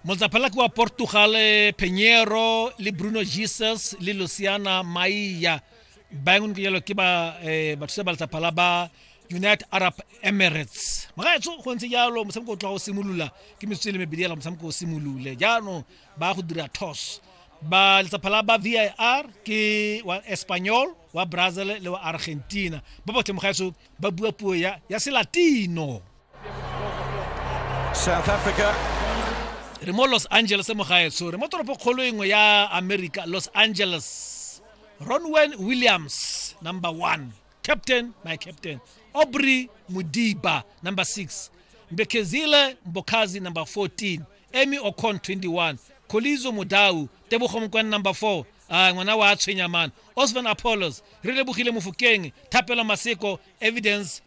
motsaphalaki wa portugal penyero le bruno jesus le luciana maia ba engwe ke jalo ke ba eh, bathusa ba letsaphala ba united arab emirates magaetso go ntse jalo motshameko o tloga o simolola ke metsotso e le mebedi ela motshameko o simolole jaanong ba go dira toss ba letsaphala ba vir ke wa espanyol wa brazil le wa argentina ba botlhe mogaetso ba bua puo ya, ya selatino South Africa re mo los angeles mo gaetsho re mo toropo kgolo engwe ya america los angeles ronwen williams number one captain my captain aubrey mudiba number six mbekezile mbokazi number 14 emy ocon 21 kolizo modau tebogo mokwane number 4 a ngwana wa tshwenyamane osvan apollos re lebogile mofokeng thapelo maseko evidence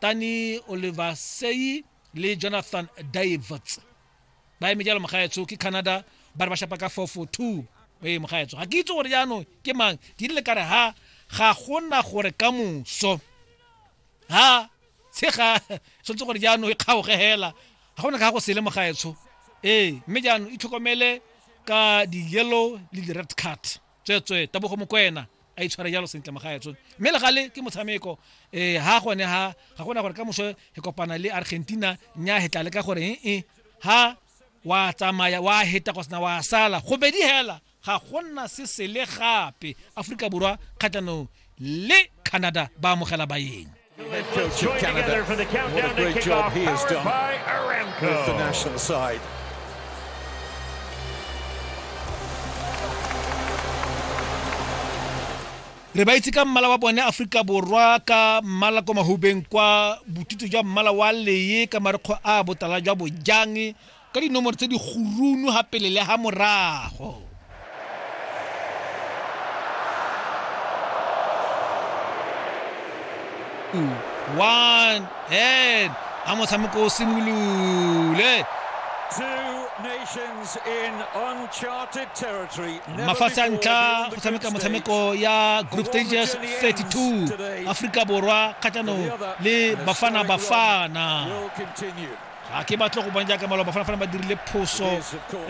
tani oliver seyi le jonathan daivets ba eme jalo mogaetso ke canada ba re ba shapa ka 442 ee mogaetso ga ke itse gore jaanong ke mang ke rile kare ha ga gona gore ka moso ha tshega tshwanetse gore jaanong e kgaoge hela ga gona ka go sele mogaetsho ee mme jaanong itlhokomele ka di-yellow le di-red card tswetswe tabogo mokwena a itshware jalo sentle magaetso mme le gale ke motshameko um eh, ga gone ga ga gona gore ka moso e kopana le argentina nya hetla le ka gore ee eh, eh, ha wa tsamaya wa heta go sena wa sala go bedi hela ga gona se sele gape aforika borwa kgatlhanong le canada ba amogela bayeng Let's join Canada. together for the countdown what a great to job he has done by Aramco. with the national side. re ba itse ka mmala wa bone aforika borwa ka mmala kwa mahubeng kwa botutu jwa mmala wa leye ka marekgo a botala jwa bojang ka dinomoro tse di gurunu ha pele le ha morago one and a motshameko o simolole mafatshe a ntlha go tshameka motshameko ya group stages 32 aforika borwa kgatlhanong le bafana bafana ga ke batle go bona jaaka maloba fana ba dirile phoso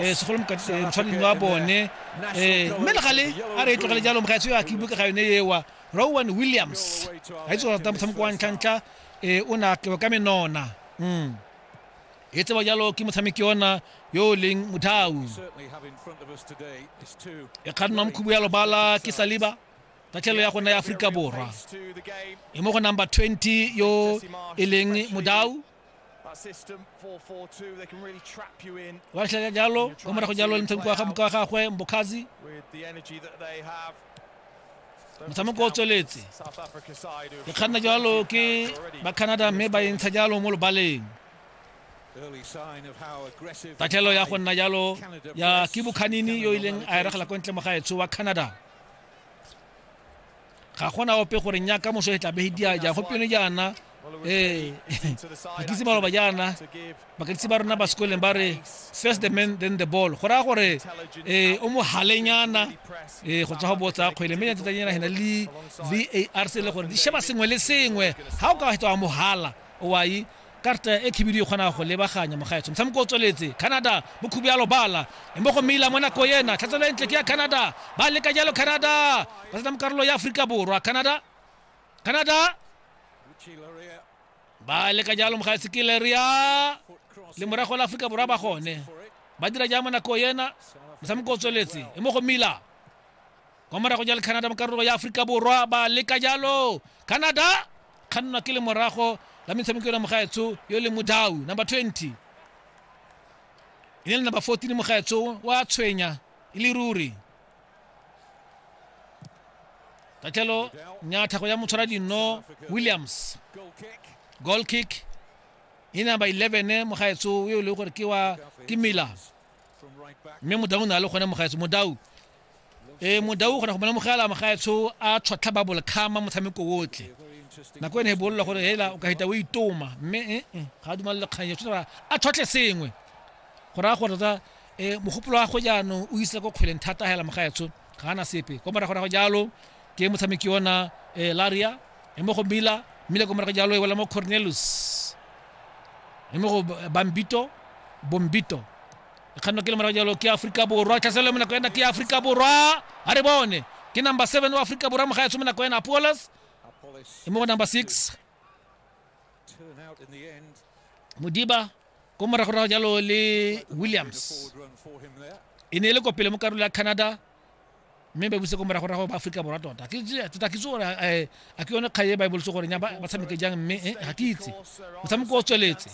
eh, segolo motshwaneng eh, wa bone eh, mme le gale a re e tlogele jalo mogaetso yo a ke buka ga yone ewa rowan williams ga itse go rata motshameko wa ntlhantlha um o ne a tlewa ka menona mm. e tseba jalo ke motshameki ona yo o leng mothau e kgannwa mokhubu ya lobala ke saliba tatlhelo ya gona ya aforika borwa e mo go number 20 yo e leng modau wa tlhela jalo kwa morago jalo le motshameko wa ga moka wa gagwe mbokhazi motshameko o tsweletse e kganna jalo ke ba canada mme ba e ntsha jalo mo lobaleng tatlhelo ya go nna jalo ya ke bokhanini yo ileng a eregela kwa ntle mo gaetsho wa canada ga gona ope gore nya ka moso e tla be dia ja go pele jana eh bakitse ba roba jana bakitse ba rona ba sekoleng ba re first the man then the ball go raya gore eh o mo halenyana eh go tswa go botsa kgwele mme ntse tsanyana hena le VAR se le gore di sheba sengwe le sengwe ha o ka wa mo hala o wa Karta e khibidu e kgona go lebaganya mogaetsho. Motshameko o tsweletse. Canada, Mokhubi a lobala. Embo go meila mo nako ena. Tlhatselo e ntle ke ya Canada. Ba leka jalo Canada. Ba tsena mo karolo ya Aforika Borwa. Canada. Canada. Ba leka jalo mogaetsho ke Leria. Le morago la Aforika Borwa ba gone. Ba dira jang mo nako ena. Motshameko o tsweletse. Embo go meila. kwa morago ja le canada mo karolo ya aforika borwa ba leka jalo canada kgannwa ke le morago la metshameko ena mogaetsho yo le modau number 20 e ne le number 14 mogaetsho wa tshwenya e le ruri tatlhelo nyatha go ya motshwara dinno williams goal kick e number 11 mogaetsho yo e leng gore ke wa ke miller mme modau o ne a le gone mogaetsho modau e modau o kgona go molemogela magaetsho a tshwatlha ba bolekgama motshameko otlhe nako ene e bolola gore hela o ka heta o itoma mme eh, eh, ga a dumalele kgang eo tshwanetse a tshwatlhe sengwe go raya gore tsa um mogopolo wa go jaanong o isa ko kgweleng thata hela magaetsho ga ana sepe ko morago rago jalo ke motshameki ona um laria e mo go mila mmile ko morago jalo e wela mo cornelus e mo go bambito bombito kganno ke le morago jalo ke aforika borwa tlhaselo mo nako ena ke aforika borwa a re bone ke number seven wa aforika borwa moga yatso mo nako ena apolos e mo go number six modiba ko moragorago jalo le williams e ne e le kopele mo karolo ya canada mme ba buse ko morago rago ba aforika borwa tota tota ke itse gore eh, a ke yone kgae e ba e boletse gore nya ba tshameke jang mme eh, ga ke itse motshameko o tsweletse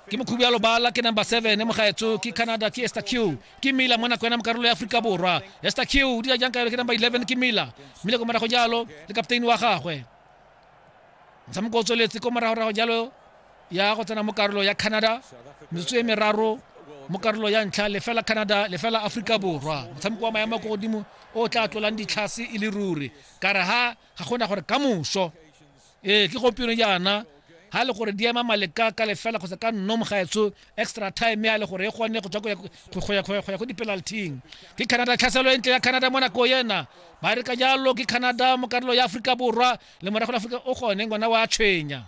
ke mokhubi ya lobala ke number seven e mogaetso ke canada ke ester q ke mila mo nako ena mo karolo ya aforika borwa ester q o dira jang ka yone ke number eleven ke mila mmile ko morago jalo le kapteine wa gagwe motshameko o tsweletse ko moragorago jalo ya go tsena mo karolo ya canada metsotso e meraro mo karolo ya ntlha lefela canada lefela aforika borwa motshameko wa maemo ko godimo o tla tlolang ditlhase e le ruri ka re ha ga gona gore ka moso ee ke gompieno jaana ha e le gore di ema maleka ka lefela kgotsa ka nno mogaetsho extra time ya le gore e kgone go tswa go ya ko di-penalting ke canada tlhaselo e ntle ya canada mo nako yena Ba re ka jalo ke Canada mo karolo ya Aforika Borwa le morago la Aforika o gone ngwana wa tshwenya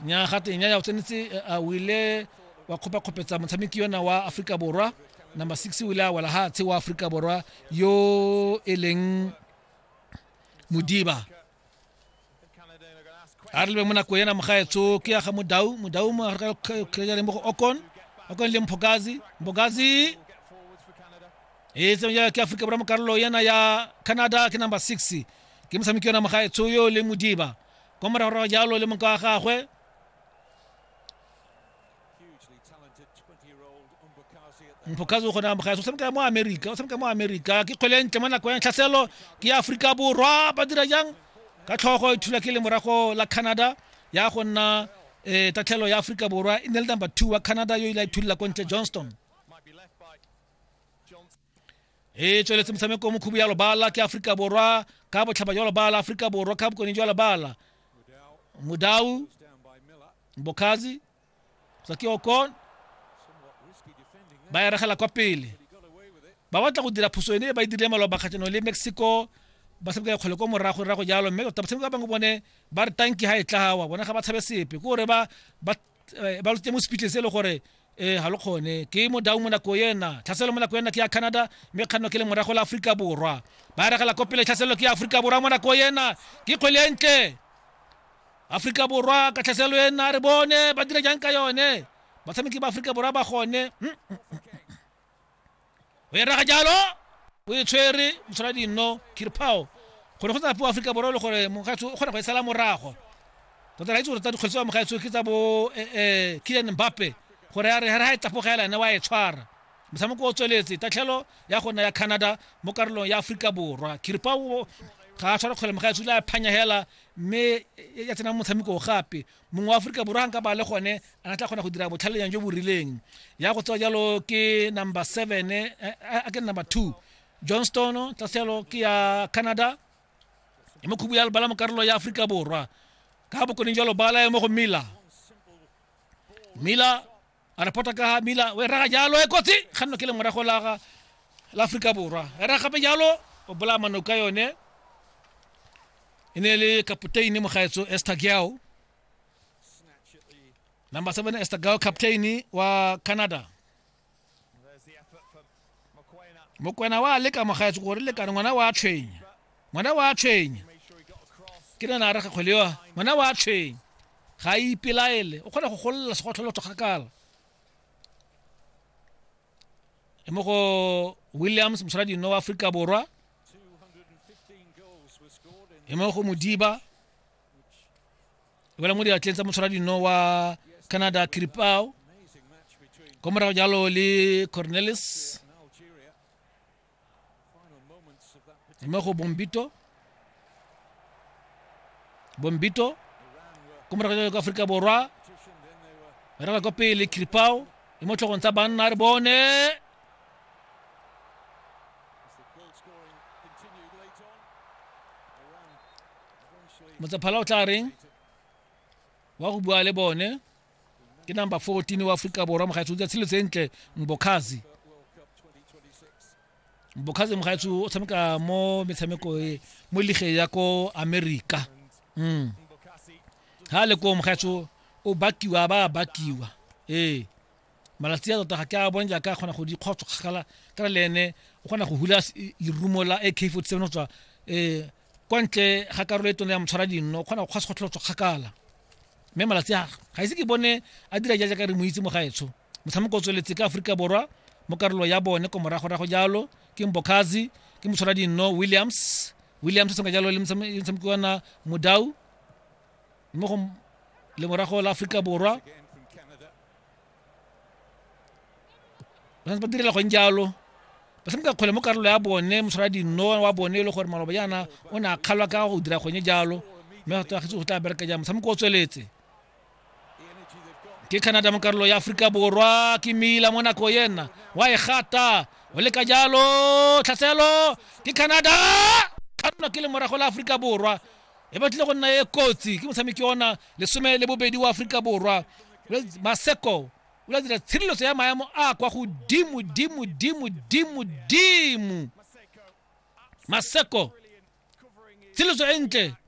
nya ga tenya ya tsenetse a wile wa khopa khopetsa motshameki yona wa Aforika Borwa number 6 wile wala ha tshe wa Aforika Borwa yo eleng Mudiba a re lebeng mo nako ena mogaetso ke ya ga modau modau mo gare ka kgejale mo go okon okon le mphokazi mphokazi e tsamaya ke aforika borwa mo karolo ena ya canada ke number six ke motshameki yona mogaetso yo le modiba kwa moragorago jalo le moka wa gagwe mpokazi o kgona amogela o tshameka mo amerika o tshameka mo amerika ke kgwele ntle mo nako ya tlhaselo ke aforika borwa ba dira jang ka tlhogo e thula ke le morago la canada ya go nna um tatlhelo ya aforika borwa e ne le number two wa canada yo ile a ithulula ko ntle johnston e tsweletse motshameko mokhubu ya lobala ke aforika borwa ka botlhaba jwa lobala aforika borwa ka bokone jwa lobala mudau bokazi saki okon ba eregela kwa pele ba batla go dira phoso ene e ba e dirile maloba kgatlhanong le mexico ba tshameka ya kgole ko morago rago jalo mme tota batshameki ba bangwe bone ba re tanki ga e tlawa bona ga ba tshabe sepe ke gore ba ba eh, ba lo tse mo speechle se le gore eh ha lo khone ke mo dau mo nako yena tlhaselo mo nako yena ke ya Canada mme kganno ke le morago la Afrika Borwa ba re gala kopele tlhaselo ke ya Afrika Borwa mo nako yena ke kgwele e ntle Afrika Borwa ka tlhaselo yena re bone ba dira jang ka yone batshameki ba Afrika Borwa ba gone mm, mm, mm, o e raga jalo o e tshwere motshwara dinno kirpao gore go tsa po aforika borwa le gore mogatso o kgona go e sala morago tota ra itse gore tsa dikgwedi tsa mogatso ke tsa bo eh, eh, kilian mbappe gore a re ga ga e tlapogela ene wa e tshwara motshameko o tsweletse tatlhelo ya gona ya canada mo karolong ya aforika borwa kirpao ga a tshwara kgwele mogatso le a phanyagela mme ya tsenang motshameko gape mongwe wa aforika borwa nka ba le gone a na tla kgona go dira botlhalenyang jo bo rileng ya go tsewa jalo ke number seven eh, eh, a ke number two johnston tla selo ke ya canada e mo khubu ya lebala mo karolo ya aforika borwa ka bokoning jalo bala e mo go mila mila a re phota ka mila o e raga jalo e kotsi kganno ke le morago la la aforika borwa e raga gape jalo o bolaya manoko ka yone e ne le kapoteine mogaetso esther giao number seven esther giao captain wa canada mokwena wa leka mogaetso gore lekane ngwana wa tshwenya ngwana wa tshwenya ke nana a re gakgwele yo ngwana wa tshwenya ga a ipelaele o kgona go golola segotlholotho kgakala e mo go williams mosaradino wa aforika borwa e mo go modiba wela mo diatleng tsa motshwara dino wa canada kiripao kwa morago jalo le cornelis mme go bombito bombito kwa morago jalo ka aforika borwa re ba kwa pele kiripao le mo tlhogong tsa banna re bone motsaphala o tla reng wa go bua le bone ke number 14 wa aforika borwa mogaetsho o tsatshilo tse ntle mbokhazi mbokhazi mogaetsho o tshameka mo metshameko e mo lige ya ko america mm. ha le ko mogaetsho o bakiwa ba bakiwa ee malatsi a tota ga ke a bone jaaka a kgona go di kgotso kgakala ka le ene o kgona go hula lerumo la ak 47 go tswa um kwa ntle ga karolo e tone ya motshwara dinno o kgona go kgwa sekgotlholo tswa kgakala mme malatsi a ga ise ke bone a dira ja jaaka re mo itse mo gaetsho motshameko o tsweletse ka aforika borwa mo karolo ya bone ko moragorago jalo ke mbokazi ke motshwara dinno williams williams o tshameka jalo le motshameki wana modau mo go lemorago la aforika borwa ba santse ba direla gong jalo ba tshameka kgwele mo karolo ya bone motshwara dino wa bone e le gore maloba jaana o ne a kgalwa ka go dira gone jalo mme go tagetse go tla bereka jang motshameko o tsweletse ke canada mo karolo ya aforika borwa ke mila mo nako yena wa e gata o leka jalo tlhaselo ke canada ka nna ke le morago la aforika borwa e batlile go nna e kotsi ke motshameki ona lesome le bobedi wa aforika borwa maseko o la dira tshireletso ya maemo a kwa godimo dimo dimo dimo dimo maseko tshireletso e ntle